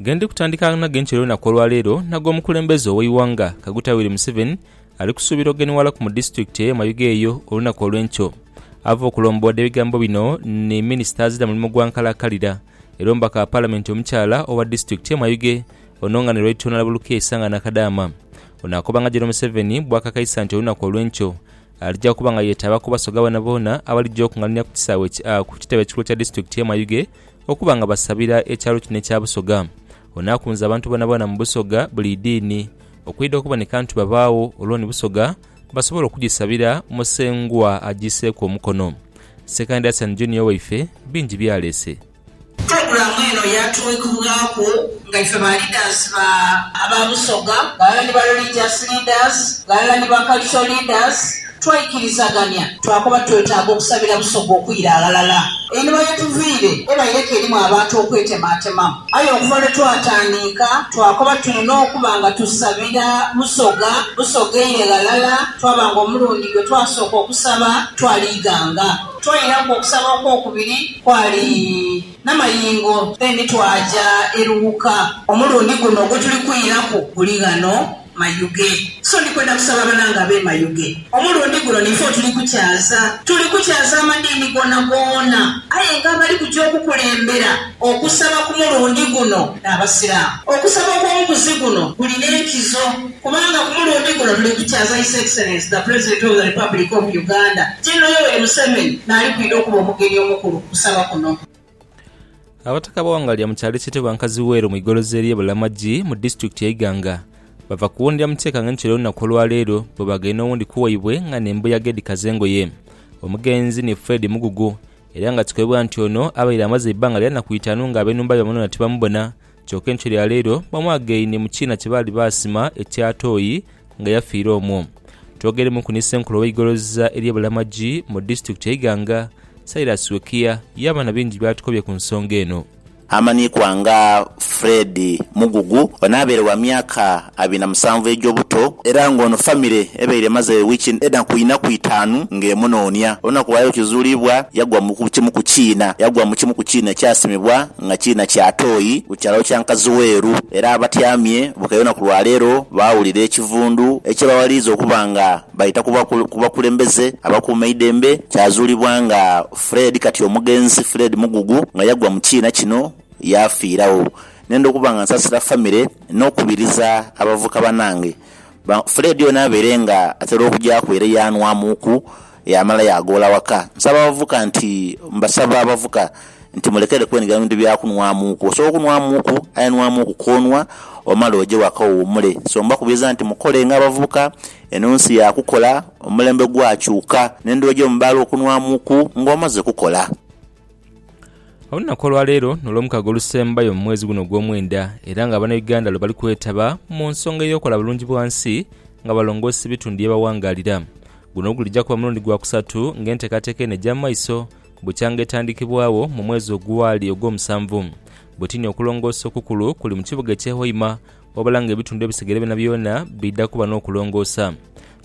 Gendi kutandika nago enkyo y'olunaku olwaleero n'ag'omukulembeze ow'eighanga Kaguta Yoweri Museveni ali kusuubira ogenyi walala ku mu disitulikiti eye Mayuge eyo olunaku olw'enkyo. Ava okulombooda ebigambo bino ni minisita azira mulimo gwa nkalakalira era omubaka wa palamenti omukyala owa disitulikiti ye Mayuge Onong'ane Lwaitwa Nalabuluke Isanga Nakadaama. Ono akobangagya ni Museveni bwakakaisa nti olunaku olw'enkyo Alija kuba nga yeetaba ku Basoga boonaboona abalija okung'anira ku kisaawe ki a ku kitebe ekikulu ekya disitulikiti y'e Mayuge okuba nga basabira ekyalo kino ekya Busoga. Ono akunze abantu boonaboona mu Busoga buli idiini okwidha okuboneka nti babaagho olwo ni Busoga basobole okugisabira Musengwa agiiseeku omukono. Ssekandi Hassan Junior waife bingi byaleese. Pulogulaamu eno yaatulwikibwaku nga ife ba Leaders ba aba Busoga ghalala ni ba Religious Leaders ghalala ni ba Cultural Leaders twaikirizagania twakoba twetaaga okusabira Busoga okwira aghalala. Einhuma ye tuviire ebaire k'erimu abantu okwetemaatemamu aye okuva lwe twatandiika twakoba tulina okuba nga tusabira Busoga, Busoga eire ghalala twaba nga omulundi gwe twasooka okusaba twali Iganga. Twairaku okusaba okwokubiri kwali namayingo then twaja eruwuka. Omulundi guno gwetuli kwiraku guli ghano Mayuge so ndikwenda kusaba banange abe Mayuge omulundi guno ninfoo tuli kukyaza tuli kukyaza amadiini gona gona aye nga abali kuja okukulembera okusaba kumulundi guno nabasiramu. Okusaba okwomukuzi guno gulina enkizo. Kubanga ku mulundi guno tuli kukyaza His Excellence the President of the Republic of Uganda, General Yoweri Museveni naali kwidha okuba omugenyi omukulu ku kusaba kuno. Abataka ba Wangalya mu kyalo ekyetebwa Nkaziweero mu igolozi erye Bulamagi mu disitulikiti ye Iganga bava kuwundira mukyeka nga enkyula y'olunaku olwaleero bwebagenda owundi kuwaibwe nga nembuyaga edhikaza engoye. Omugenzi ni Fred Mugugu era nga kikolebwa nti ono abaire amaze eibanga lya naku itaanu nga abenumbaye bamunona tibamubona Kyoka enkyo ya leero bamwagaine mu kiina kye baali baasima ekya Toi nga yafiira omwo. Twogeremuku ni Ssenkulu w'eigoloza ery'eby'obulamagi mu disitulikiti e Iganga, Silas Wekia yaaba na bingi by'atukobye ku nsonga eno. Amanhikwa nga Fred Mugugu ono abaire wa myaka Abina musanvu egy'obuto era nga ono famire ebaire emaze wiiki edha ku ina ku itaanu nga emunoonia. Olunaku lwaleero kizuulibwa yagwa mu kimu ku kiina yagwa mu kimu ku kiina ekyasimibwa nga kiina kya Toi ku kyalo kya Nkaziweeru era abatyamye buka olunaku lwaleero baawulira ekivundu ekyebawaliriza okuba nga baita ku bakulembeze abakuumaidembe kyazuulibwa nga Fred kati omugenzi Fred Mugugu nga yagwa mu kiina kino yaafiiragho. Nenda okuba nga nsasira famire n'okubiriza abavubuka banange. Ba Fred ono abaire nga atera okugyaku ere yanwamuku yamala yagoola awaka. Nsaba abavubuka nti mbasaba abavubuka nti mulekere kwenigirira mu bintu bya kunwamuku. Osobola okunwamuku aye nwamuku konwa omale oje waka owumule. So mbakubiriza nti mukole nga abavubuka eno nsi ya kukola, omulembe gwakyuka. Nenda oje mu baala okunwamuku nga omaze kukola. Olunaku olwaleero n'olwomukaga olusembayo mu mwezi guno ogwomwenda era nga banauganda lwebali kwetaba mu nsonga eyokola bulungi bwansi nga balongoosa ebitundu yebawangaalira. Guno gulija kuba mulundi gwa kusatu nga entekateka eno eja mu maiso bukyanga etandikibwagho mu mwezi ogwali ogwomusanvu. Bwetini okulongoosa okukulu kuli mu kibuga ekye Hoima wabula nga ebitundu ebisegeire byonabyona bidha kuba n'okulongoosa.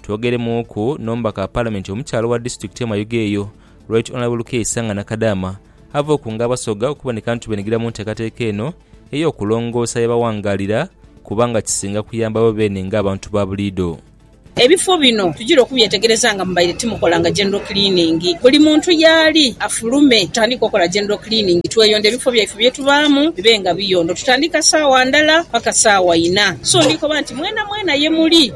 Twogeiremuuku n'omubaka wa palamenti omukyala owa disitulikiti e Mayuge eyo Right Honourable Lukeisa nga nakadaama ava okunga Abasoga okuboneka nti benigira mu nteekateeka eno ey'okulongoosa yabawangaalira kubanga kisinga kuyamba bo beene nga abantu ba buliido. Ebifo bino tugira okubyetegereza nga mubaire timukola nga general cleaning. Buli muntu yaali afulume tutandike okola general cleaning tweyonde ebifo byaife byetubaamu bibe nga biyondo tutandika saawa ndala paka saawa ina so ndikoba nti mwenamwena yemuli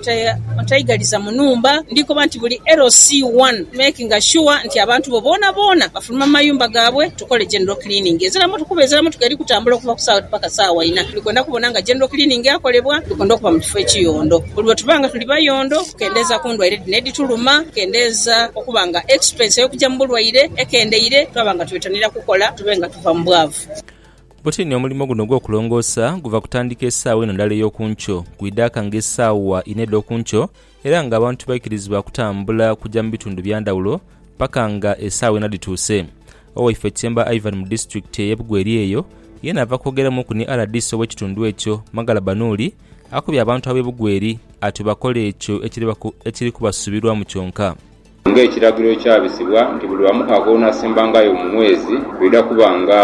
mutaigaliza munhumba ndikoba nti buli LC1 Makinga sure nti abantu bo boonaboona bafuluma mu mayumba gaabwe tukole general cleaning. Ezira motoka oba ezira motoka eri kutambula okuva ku saawa paka saawa inha tuli kwenda kubona nga general cleaning akolebwa tuli kwenda okuba mu kifo ekiyondo. Buli bwe tuba nga tuli bayondo tukendeeza ku ndwaire dhino edhituluma, tukendeeza okuba nga expense ey'okuja mu bulwaire ekendeire twaba nga twetanira kukola tube nga tuva mu bwavu. Butini omulimo guno ogw'okulongoosa guva kutandika esaawa eno ndala ey'oku nkyo, gwidhaaka nga esaawa inha edh'oku nkyo era nga abantu baikirizibwa okutambula okuja mu bitundu bya ndhawulo paka nga esaawa ena dhituuse. Owaife Chemba Ivan mu disitulikiti eye Bugweri eyo yeena ava kwogeramuku ni rdc ow'ekitundu ekyo Magala Banuuli akubye abantu abe Bugweri ati bakole ekyo ekiri kubasubirwamu kyonka. Nga ekiragiro kyabisibwa nti buli wamu ka gw'onasimbangayo mu mwezi kwidha kuba nga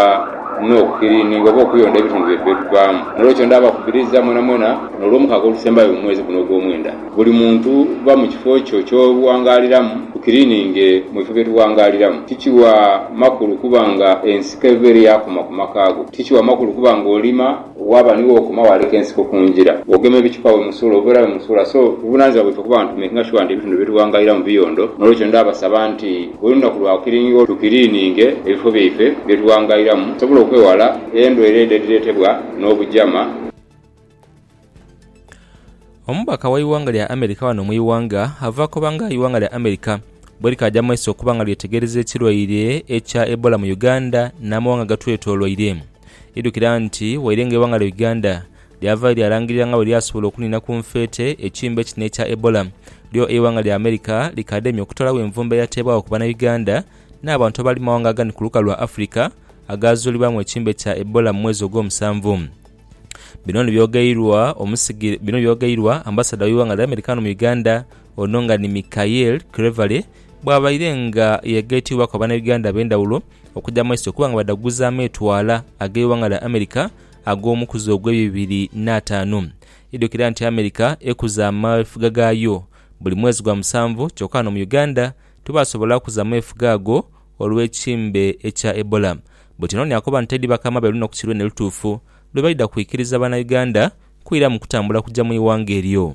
n'okukiriininga oba okuyonda ebitundu bye bye bivaamu. N'olwekyo ndabakubiriza mwenamwena n'Olwomukaga olusembayo mu mwezi guno ogw'omwenda, buli muntu va mu kifo kyo ky'owangaaliramu tukiriininge mu bifo bye tuwangaaliramu. Tikiwa makulu kuba nga ensiko eva ere yaakoma ku maka go. Tikiwa makulu kuba nga olima. Waaba ni wookoma waaleka ensiko ku ngira, woogema ebicupa we musuula, oveera we musuula. So, buvunaanyizibwa bwaife okuba nga tumekinga shuwa nti ebitundu bye tughangaaliramu biyondo. N'olwekyo ndabasaba nti buli lunaku lwa kiringo tukiriininge ebifo byaife bye tughangaaliramu tusobole okwewala endwaire edho edhireetebwa n'obujama. Omubaka w'eighanga lya America ghano mu ighanga ava koba nga eighanga lya America bwerikaaja maiso okuba nga lyetegereza ekirwaire ekya Ebola mu Uganda n'amawanga agatwetoloire. Idhukira nti waire nga eighanga lya Uganda lyavaayo lyalangirira nga bwe lyasobola okuniina ku nfeete ekiimba ekine ekya Ebola, lyo eighanga lya America likademya okutoolagho envumbo eyateebwagho ku Banauganda n'abantu abaali mu mawanga agandi ku lukalu lwa Africa agaazuulibwamu ekiimba ekya Ebola mu mwezi Ogwomusanvu. Bino ni bino byogeirwa Ambasada w'eighanga lya America ghano mu Uganda ono nga ni Mikhail Krevale bwabaire nga yegaitibwaku Abanauganda ab'endhawulo Okudha mu maiso okuba nga badhaguza ametwala ag'eighanga lya America ag'omukuzi ogw'ebibiri n'ataanu. Idhukira nti America ekuza ameefuga gaayo buli mwezi gwa musanvu kyoka ghano mu Uganda tibaasobola kuza meefuga ago olw'ekimbe ekya Ebola. Bwetino naakoba nti taidhi bakama be lunaku ki lwene lutuufu lwe baidha kwikiriza Banauganda kwiramu kutambula kuja mu ighanga eryo.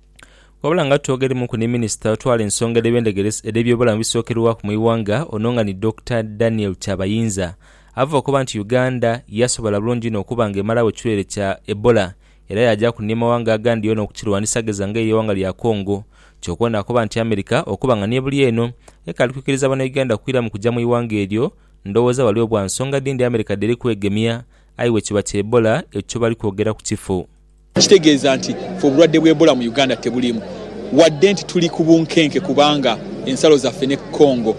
Wabula nga twogeremuku ni minisita atwala ensonga edh'ebyendagala edh'ebyobulamu ebisokerwaku mu ighanga ono nga ni Dokita Daniel Kyabayinza ava okoba nti Uganda yasobola bulungi inho okuba nga emalagho ekirwaire kya Ebola era yajaku ni mawanga agandi yona okukirwanisa geza nga eighanga lya Congo kyoka ono akoba nti America okuba nga nebuli eno ekali kwikiriza banauganda kwiramu kuja mu ighanga eryo ndhowooza ghaligho bwa nsonga dhindi America dheri kwegemya aye bwekiba kya Ebola ekyo bali kwogera ku kifo Kitegeeza nti ffe obulwadde bw'Ebola mu Uganda tebuliimu wadde nti tuli ku bunkenke kubanga ensalo zaffe ne Congo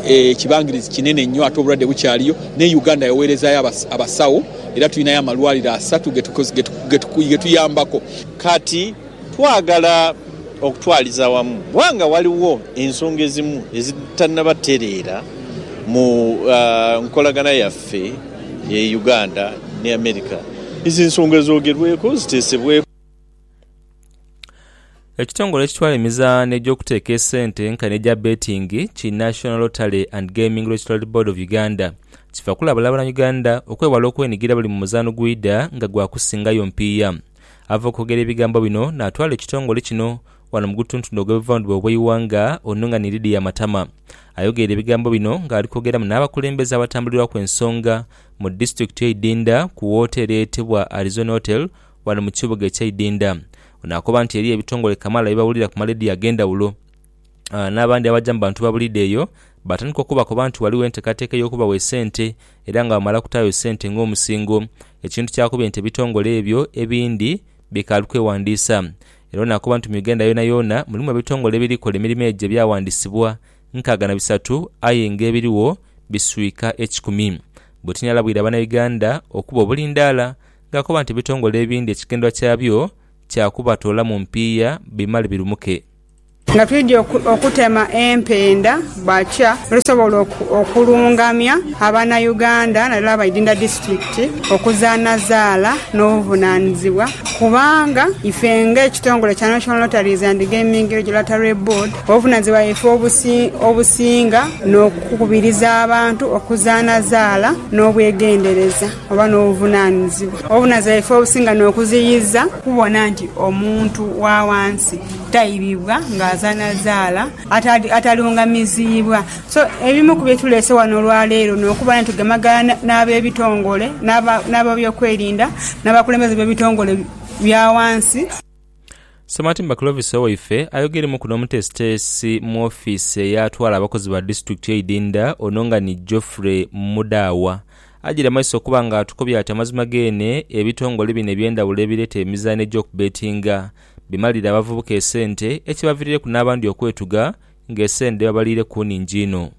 ekibangirizi kinene nnyo ate obulwadde bukyaliyo naye Uganda yaweerezaayo abasawo era tulinayo amalwaliro asatu ge tuyambako. Kati twagala okutwaliza awamu kuba nga waliwo ensonga ezimu ezitanaba tereera mu nkolagana yaffe. ye Uganda ni America izi nsonga ezoogerweku ziteesebweku. Ekitongole ekitwala emizaanho egy'okuteeka esente nkaine gya beetingi ki National Lottery and Gaming Regulatory Board of Uganda kifa kulabalaaba Bannayuganda okwewala okwenhigira buli mu muzaanho gwidha nga gwa kusingayo mpiiya. Ava okwogera ebigambo bino n'atwala ekitongole kino, Ghano mu gutuntundo ogw'ebuvandhuba obw'eighanga, ono nga ni Lydia Matama ayogeire ebigambo bino nga ali kwogeraamu n'abakulembeze abatambulirwaku ensonga mu disitulikiti ye Idinda ku woteeri eyetebwa Arizona Hotel ghano mu kibuga ekye Idinda. Ono akoba nti eriyo ebitongole kamaala bye bawulira ku maleediyo ag'endhawulo n'abandi abaja mu bantu babuliidho eyo baatandika okubakoba nti ghaligho enteekateeka ey'okubawa esente era nga bamala kutaayo sente ng'omusingo ekintu kyakubye nti ebitongole ebyo ebindi bikaali kwewandiisa Era onaakoba nti mu Uganda yoonayoona mulimu ebitongole ebiri kola emirimo egyo ebyawandisibwa nkaaga na bisatu aye nga ebirigho biswika ekikumi. Butini alabwire abanauganda okuba obulindaala nga akoba nti ebitongole ebindi ekigendwa kyabyo kya kubatoolamu mpiiya bimale birumuke. Nga twidhi okutema empenda bwakya bwetusobola okulungamya abana Uganda nadala abaidinda disiturikiti okuzaanazaala n'obuvunanizibwa kubanga ife nga ekitongole kya National Lotteries and Gaming Regulatory Board obuvunanizibwa bwaife obusinga n'okukubiriza abantu okuzaanazaala n'obwegendereza oba n'obuvunanizibwa. Obuvunanizibwa bwaife obusinga n'okuziyiza kubona nti omuntu wa wansi Taibibwa nga azaanazaala, atalungamiziibwa. So, ebimu ku bye tuleese wano olwaleero n'okuba nti tugemagana n'abebitongole, n'ababyokwerinda, n'abakulembeze b'ebitongole bya wansi. Ssematimba Clovis Owaife ayogeremuku n'omuteesiteesi mu ofiisi ey'atwala abakozi ba disitulikiti y'eidinda ono nga ni Geoffrey Mudaawa ajaire mumaiso okuba nga atukubya ati amazima geene ebitongole bino eby'endhawulo ebireeta emizaano egy'okubetinga bimalire abavubuka esente ekibavirireku n'abandi okwetuga nga esende dhebabaliire ku nhingi inho.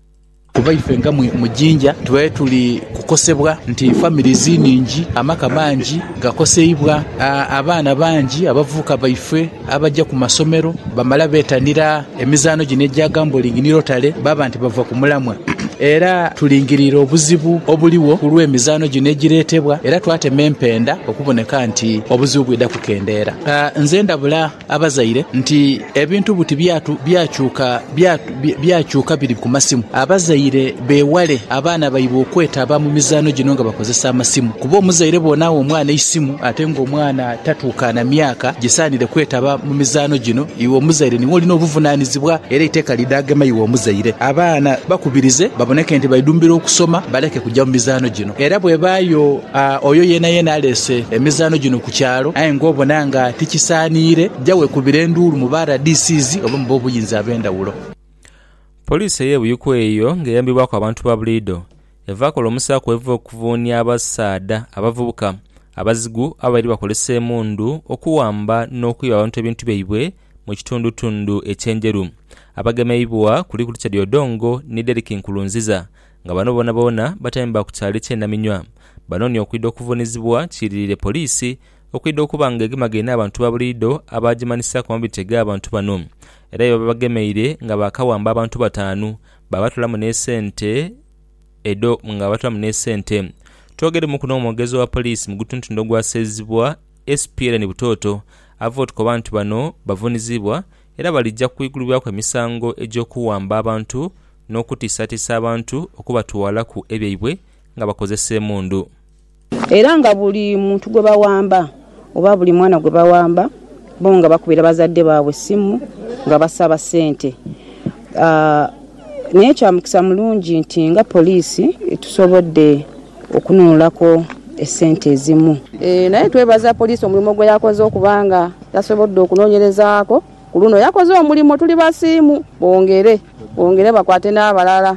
Kuba ife nga mu Jinja tubaire tuli kukosebwa nti families nhingi, amaka mangi gakoseibwa, abaana bangi abavubuka baife abaja ku masomero bamala betanira. Emizaano gino egya gambolingi ni lotale baba nti bava ku mulamwa era tulingiriire obuzibu obuligho ku lw'emizaano gino egireetebwa era twatema empenda okuboneka nti obuzibu bwidha kukendeera. Nze ndabula abazaire nti ebintu buti byakyuka biri ku masimu abazaire. Beewale abaana baibwe okwetaba mu mizaano gino nga bakozesa amasimu kuba omuzaire bwona agha omwana eisimu ate nga omwana tatuukaana myaka gisaanire kwetaba mu mizaano gino, iwe omuzaire niiwe olina obuvunaanizibwa era eiteeka lidhaagema iwe omuzaire. Abaana bakubirize baboneke nti baidhumbira okusoma baleke kuja mu mizaano gino era bwebaayo oyo yeenayeena aleese emizaano gino ku kyalo aye nga obona nga tikisaaniire, ja weekubire enduulu mu ba RDCs oba mu b'obuyinza ab'endhawulo. Poliisi ey'e Buyuku eyo nga eyambibwaku abantu ba buliidho, eva kola omusango ku biva okuvuunia abasaadha abavubuka abazigu ababaire bakozesa emundu okuwamba n'okwiba abantu ebintu byaibwe mu kitundutundu eky'e Njeru. Abagemeibwa kuliku Richard Odongo ni Derrick Nkurunziza nga bano boonaboona batabime ba ku kyalo eky'e Naminywah. Banoonia okwidha okuvunizibwa kiiririre poliisi okwidha okuba nga egemageine abantu ba buliidho abaagimanhisaaku amabityo g'abantu bano era bye babagemeire nga baakawamba abantu bataanu baabatolamu n'esente edho nga baabatolamu n'esente. Twogedhemu ku n'omwogezi owa poliisi mu gutuntundo gwa Sezibwa, SP Ellen Butoto ava otukoba nti bano bavunizibwa era balija kwigulibwaku emisango egy'okuwamba abantu n'okutiisatiisa abantu okubatwalaku ebyaibwe nga bakozesa emundu. Era nga buli muntu gwe bawamba oba buli mwana gwe bawamba bo nga bakubira bazadde baabwe ssimu nga basaba ssente. Naye kya mukisa mulungi nti nga poliisi tusobodde okununulaku essente ezimu. Naye twebaza poliisi omulimu gwe yakoze okuba nga yasobodde okunoonyerezaaku ku luno. Yakoze omulimu, tuli basiimu. Bongere bongere bakwate n'abalala.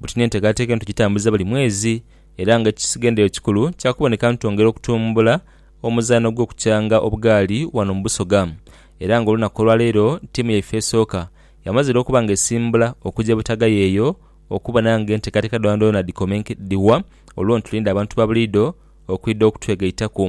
Buti n'enteekateeka eno tugitambuliza buli mwezi era nga ekigendererwa ekikulu kya kuboneka ntwongera okutumbula omuzaano gw'okukyanga obugaali wano mu Busoga era nga olunaku olwaleero ttiimu yaife esooka yamaze dha okuba nga esimbula okuja butaga yeeyo okubona nga enteekateeka dhoonadhoona dhikomenkedhwa olwo nitulinde abantu ba buliidho okwidha okutwegaitaku.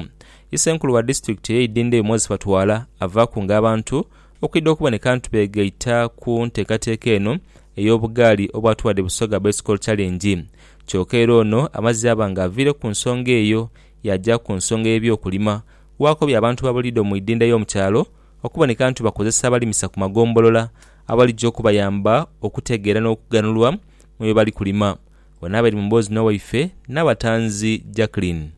Isenkulu wa disitulikiti ey'e Idhindho Ymozi Batwala avaaku nga abantu Okwidha okuboneka nitubeegaita ku nteekateeka eno ey'obugaali obwatuwadde Busoga Bicycle Challenge. Kyoka era ono amazze aba nga aviire ku nsonga eyo yaaja ku nsonga y'ebyokulima waakobya abantu ba buliido mu idinda y'omu kyalo okuboneka nti bakozesa abalimisa ku magombolola abalija okubayamba okutegeera n'okughanulwa mu bye bali kulima. Ono abaire mu mboozi n'owaife Nabatanzi Jacqueline.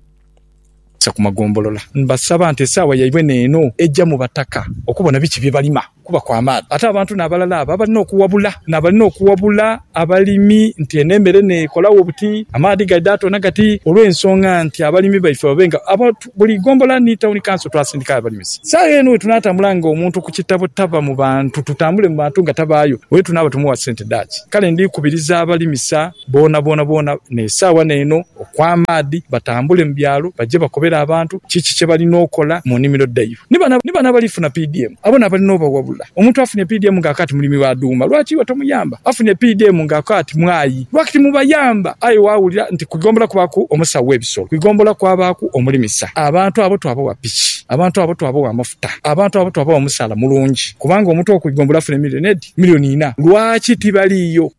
Sa ku magombolola nibasaba nti esaawa yaibwe neeno eja mu bataka okubona biki bye balima kuba kwa maadhi ate abantu nabalala abo abalina okuwabula nabalina okuwabula abalimi nti eno emere nekolagho buti amaadhi gali dhatona gati olwensonga nti abalimi baife babe nga abantu buli gombola ni town council twasindikayo abalimisa saagha eno wetunatambula nga omuntu ku kitabo tava mu bantu tutambule mu bantu nga tavaayo wetunaaba tumuwa sente dhaaki kale ndikubiriza abalimisa Boonaboona boona n'esaawa n'eno okw'amaadhi batambule mu byalo baje bakobere abantu kiki kye bali n'okola mu nimiro dhaibwe. Ni bano ni bano abali funa PDM. Abo n'abali n'obawabula. Omuntu afunye PDM ng'akaati mulimi wa dhuuma, lwaki iwe tomuyamba? Afunye PDM ng'akaati mwayi, lwaki timubayamba? Aye waawulira nti ku ggombolola kubaaku omusawo w'ebisolo, ku iggombolola kwabaaku omulimisa. Abantu abo twabawa piki, abantu abo twabawa amafuta, abantu abo twabawa omusaala mulungi kubanga omuntu owo ku iggombolola afuna million ed, million inha. Lwaki tibaliiyo?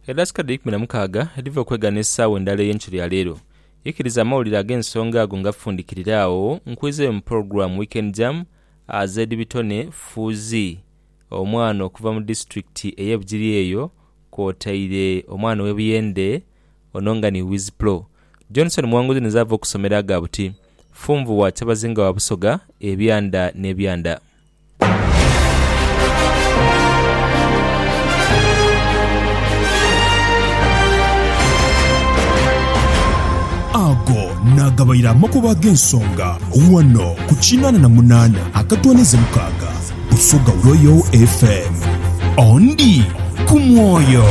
Edakika dhiri ikumi na mukaaga edhiva okwegha n'esaawa endala ey'enkyiro ya leero. Ikiriza amawulire ag'ensonga ago nga bufundikirire agho nkwizeyo mu pulogulaamu Weekend Jam a Zedibitone Fuuzi, omwana okuva mu disitulikiti ey'e Bugiri eyo kwotaire omwana ow'e Buyende ono nga ni Wizpro. Johnson Muwanguzi nize ava okusomera aga buti, Funvu wa Kyabazinga wa Busoga ebyanda n'ebyanda. Ago naagabaire amakubo ag'ensonga ghano ku kinaana na munaana akatwanize mukaaga Busoga Royal FM. Ondi ku mwoyo.